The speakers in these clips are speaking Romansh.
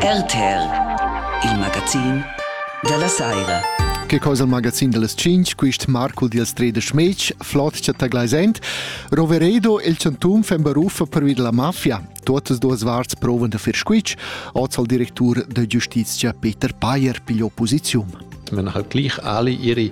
RTL, il magazin dalla saira. Che cosa il magazin dellas 5, quist Marcul dils Tredisch Mec, flot chatta gleisend. Roveredo, il chantum fan baruffa per vid la mafia. Totas duas varts provan da fir squitsch, oz al directur de giustitia Peter Payer pigliò posizium. wenn halt gleich alle ihre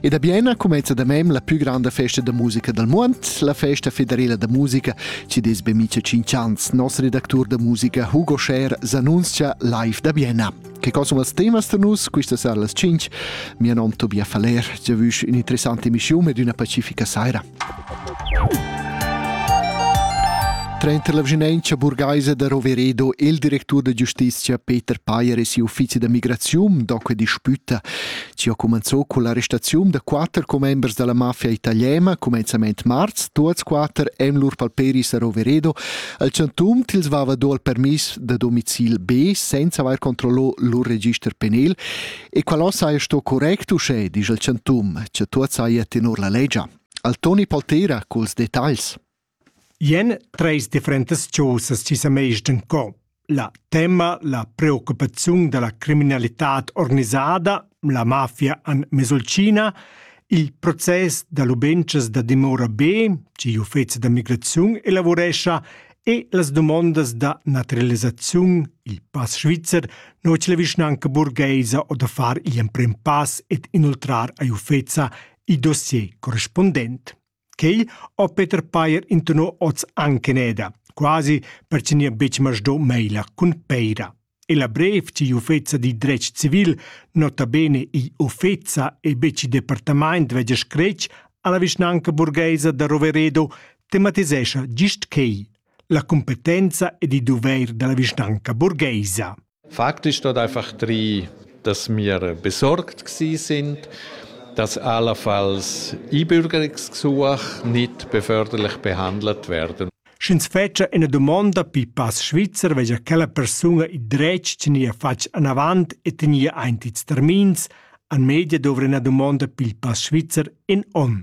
Ed a Bienna cumenza da mem la più grande festa da musica del mondo, la festa federela da musica, ci des be mica cinc ans. Nostro redactur da musica Hugo Scher s'annunzia live da Bienna. Che cosa vals temas da nus? Questa sera alle 5. Mio nome Tobias Faller. Ci vush un'interessante emissione ed una pacifica sera. Trenta l'avginenza burgaisa da Roveredo e il direttore di giustizia Peter Payer e si uffizi da migrazione, dunque disputta Ci ha cumenzò con l'arrestaziun da quatter commembers dalla mafia italiana cumenzament marz, tuots quatter en lur palperis a Roveredo, al centum tils vava do il permis da domicil B senza aver controllò lur register penal e qualò saja sto correct uschè, disch il centum, che tuot saja tenor la legia. Al Toni Paltera culs detagls. Ien treis differentas chaussas chi s'ha mess in co. La temma, la preoccupaziun da la criminalitad organisada, la mafia en Mesolcina, il process da lubentschas da dimora B, chi uffezi da migraziun elavurescha, e las dumondas da naturalisaziun, il pass svizzer, no cha la vischnanca burgheisa ho da far gl'emprem pass ed inoltrar a Uffeza il dossier correspundent. Quei ho Peter Payer intonò hoz anc in eda, quasi per chi nia betg masdò meila cun peira. E la brev chi uffeza di dretg civil, nota bene i uffeza e betg i departamaint vegia scretg alla vischnanca burgheisa da Roveredo, tematisescha gist quei, la competenza ed i doveir dalla vischnanca burgheisa. Faktisch hat einfach drei, dass wir besorgt sind, dass allenfalls Einbürgerungsgesuche nicht beförderlich behandelt werden. Sch'ins fetscha ina dumonda pi pass svizzer vegia quella persuna il dretg tgnia fatg anavant e tgnia aint ils termins, an media dovra ina dumonda pil pass svizzer in onn.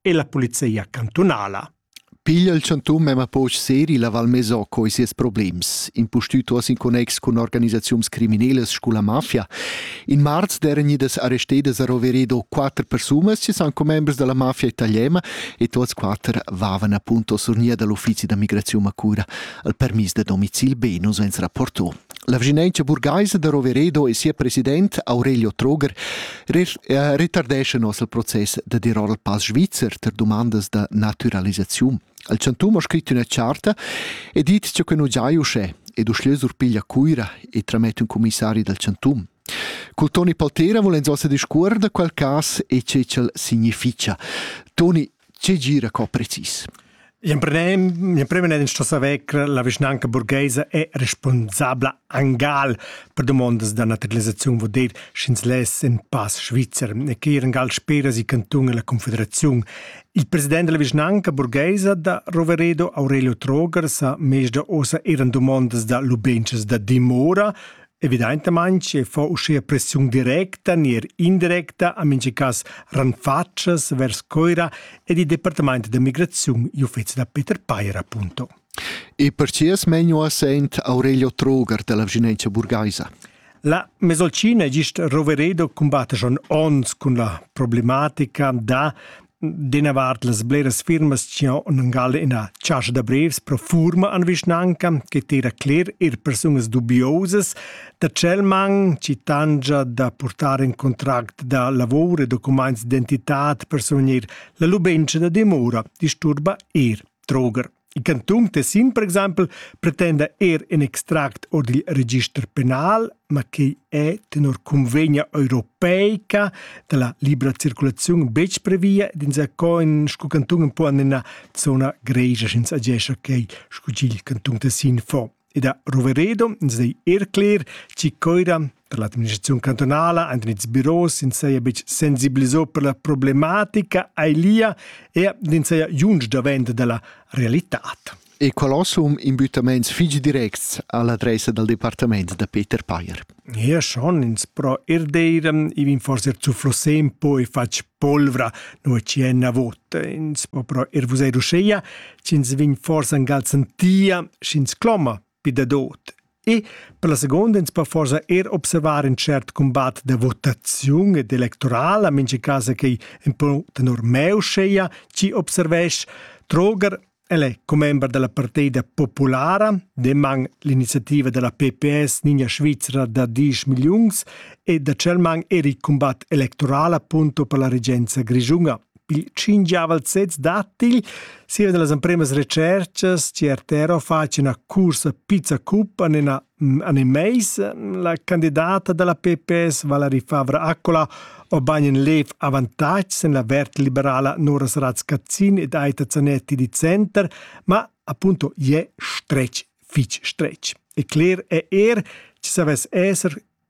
e la polizia cantunala. Piglia il chantun memma poch seri la Val Mesoco e sies problems, impustütuas in connex cun organisaziuns criminelas scu la mafia. In marz d'eran idas arrestedas a Roveredo quatter persunas che son commembers della mafia italiana e tuots quatter vavan appunto sur nia dall'uffizi da migrazione a cura al permis da domicil Benus, ens rapportò. La vischnaunca burgheisa da Roveredo e sia president Aurelio Troger retardescha nos il process da dir ora il pass svizzer per dumandas da naturalisaziun. Il chantum ha scrit üna charta e dit che quei nu giai uschè ed uschlö surpiglia Cuira e tramette un commissari dal chantum. Col Toni Paltera volens ossa discuor da quel cas e che ch'el significha. Toni, Tge gira co precis? L'emprem l'emprem n'è ins sto saver che la vischnanca burgheisa è responsabla angal per dumondas da naturalisaziun vul dir sch'ins less in pass svizzer e che ir angal spera si cantun e la confederaziun. Il president della vischnanca burgheisa da Roveredo Aurelio Troger sa mezda ossa eran dumondas da lubenchas da dimora Evidaintamaing fa uschea pressiun directa neir indirecta a mincha cas ranfatschas vers Coira ed il Departamaint da migraziun I'uffezi da Peter Peyer appunto. E percier smegno a Saint Aurelio Troger della Vigenenza burgaisa. La Mesolcina gist Roveredo combatta schon ons cun la problematica da d'ina vart las bleras firmas chi han angal ina chascha da brevs pro furma an vischnanca che tira cler ir persunas dubiosas da tschel man chi tangia da portar in contract da lavor e documents d'entità per survegnir la lubentscha da dimora disturba ir Troger. Il cantun Tessin, per exempel, pretenda er in extract or dil register penal, ma quei è tenor convegna europeica dalla libra circulazione betg previa ed insacoin sco cantun un po en ina zona gregia sch'ins agescha quei sco ch'il cantun Tessin fa. ed ha Roveredo ins dei er cler chi coira per l'administraziun cantonala ein ils biros in seia bec sensibilisò per la problematica ailia e in seia junge davent della realitat. E qual assum imbüttaments figi directs all'adressa dal departament da Peter Payer. Eir schon ins però eir d'eira ivin forsa eir zufflus se ün po e fatg polvra, nua chi ena vota. Ins po però eir vuser uscheia ch'ins vegn forsa gal sentia sch'ins cloma pü dadot. E per la seguonda ins po forsa eir observar ün tschert cumbat da votaziun ed electorala, mincha cas a quai ün po tenor me uscheia chi observesch. Troger El è commember da la partida populara, deman l'iniziativa da la PPS Ninja Svizra da diesch milliuns e da celman er il cumbat electorala punto per la regenza grischunga. Il cingiaval sez dattigl sia da las empremas recerchas CRTRO face una cursa pizza cup en una Animeis la candidata dalla PPS Valari Favre Accola obain in lev avantatg en la vert liberala Noras Razcazzin ed Aita Zanetti di Center, ma appunto je stretg fitg stretg. E cler è er, ci savess esser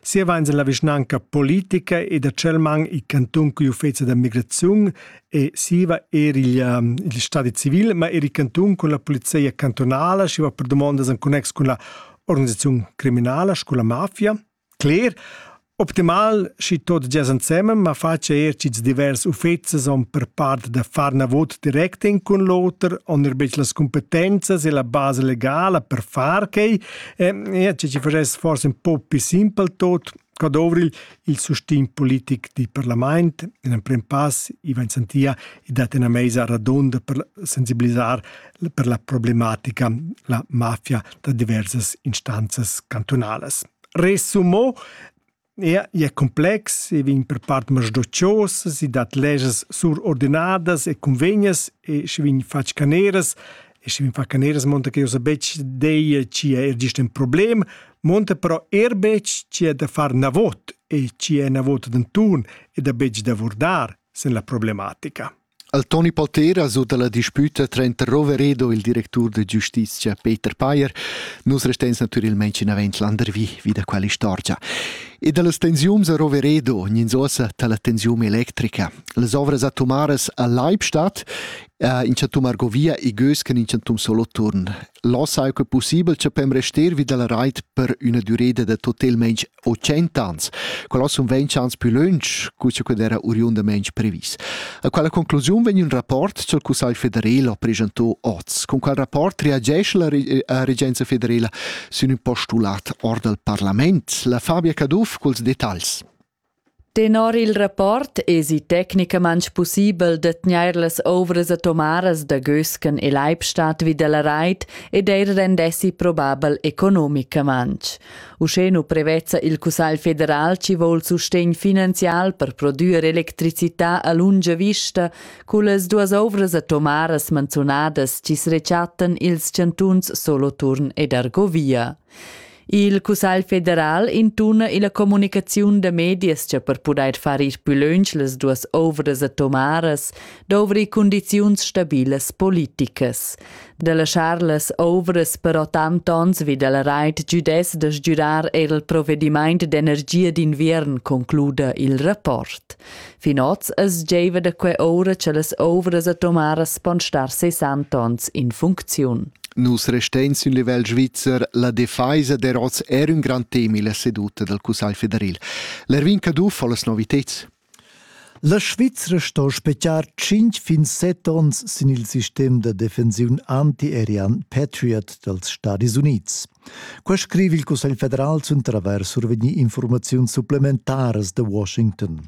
Sieva ins en la vischnanca politica e da Celman il cantun cugl uffezi da migraziun e siva er il, ehm, il stadi civil, ma er il cantun cun la polizia cantonala, siva per domondas en connex cun la organisaziun criminala, scu la mafia. Cler, Optimal schi tot gias ensemen, ma faccia er cits divers uffezies on per part da far na vot direct in cun l'oter, on er bec las competenzas e la base legala per far quei, E ci vorresti forse un po' più simpel tot, qua dovril il sustin politic di parlament, in emprem pass Ivan Santia e dat una mesa radonda per sensibilizzar per la problematica la mafia da diversas instanzas cantonales. Resumo, Ia è complex e vegn per part masdociosas, i dat leschas surordinadas e cunvegnas e sche vegn fatg caneras e sche vegn fatg caneras monta che jau sa betg dir chi è er gist in problem, monta però er betg chi è da far navot e chi è navot d'antun e da betg da vurdar sin la problematica. Al Toni Palteras u dalla disputa trenta Roveredo, il directur de giustitia Peter Payer, nus restens naturalmein chinavent landervi vi da quell'istorgia. E dallas tensiums a Roveredo, gnins ossa dalla tensium electrica, las ovras atomaras a Leibstadt, uh, in chantum Argovia e Gösken in chantum Soloturn. Lo sai che possibel, che pem rester vi dalla reit per üna dureda da totalmente o tschentans. Quella sun ventschans pü lönch cu scu d'era oriundamaing previs. A quella conclusiun vegn ün rapport ch'el Cussagl federal ha preschantò oz. Con quel rapport reagesce la regenza federala sün ün postulat or dal parlament? La Fabia Caduff culs detagls. Tenor il rapport esi tecnicamaintg pussibel da tgnair las ouvras atomaras da Gösken e Leibstadt vi dalla rait ed eir rendessi probabel economicamaintg. Uschè nu prevezza il Cussagl federal chi voul sustegn finanzial per prodüer electricità a lunga vista cullas duas ouvras atomaras manzunadas chi's rechattan i'ls chantuns Soloturn ed Argovia. Il Cussagl federal intuna illa comunicaziun da medias cha per pudair far ir pü lönch las duas ouvras atomaras dovri cundiziuns stabilas politicas. Da laschar las ouvras però tant ons vi dal rait giudess da sgürar eir il provedimaint d'energia d'inviern, concluda il rapport. Fin oz es giaiva da que oura cha las ouvras atomaras pon star sessanta ons in funcziun. Nus restains ün livel svizzer, la defaisa der oz er ün grand temi la seduta dal Cussagl federal. L'Erwin Caduff ho las noviteds. La Svizra sto spechiar 5 fin 7 ons sin il sistem da defensiun antiaerian Patriot dals Stadis Unids. Quei scriv il Cussegl federal cun travers survegni informaziuns supplementaras da Washington.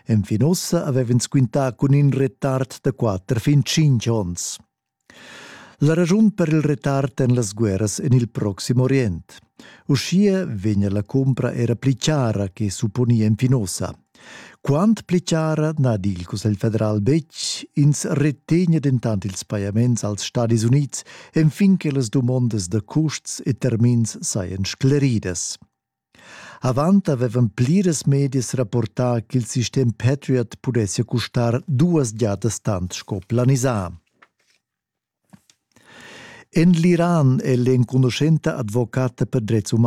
Enfin ussa avev'ins quintà cun in retard da quatter fin tschintg onns. La raschun per il retard en las guerras en il Proxim Orient. Uschia vegnia la cumpra era pli chara che supponia enfin ussa. Quant pli chara n'ha il Cussegl federal betg, ins retegna dentant ils pajaments als Stadis Unids enfin che las dumondas da custs e termins sajan scleridas. Avant avevan pliras medias rapportà ch'il sistem Patriot pudessia custar duas giadas tant sco planisà. En l'Iran è l'enconuschenta advocata per drets umani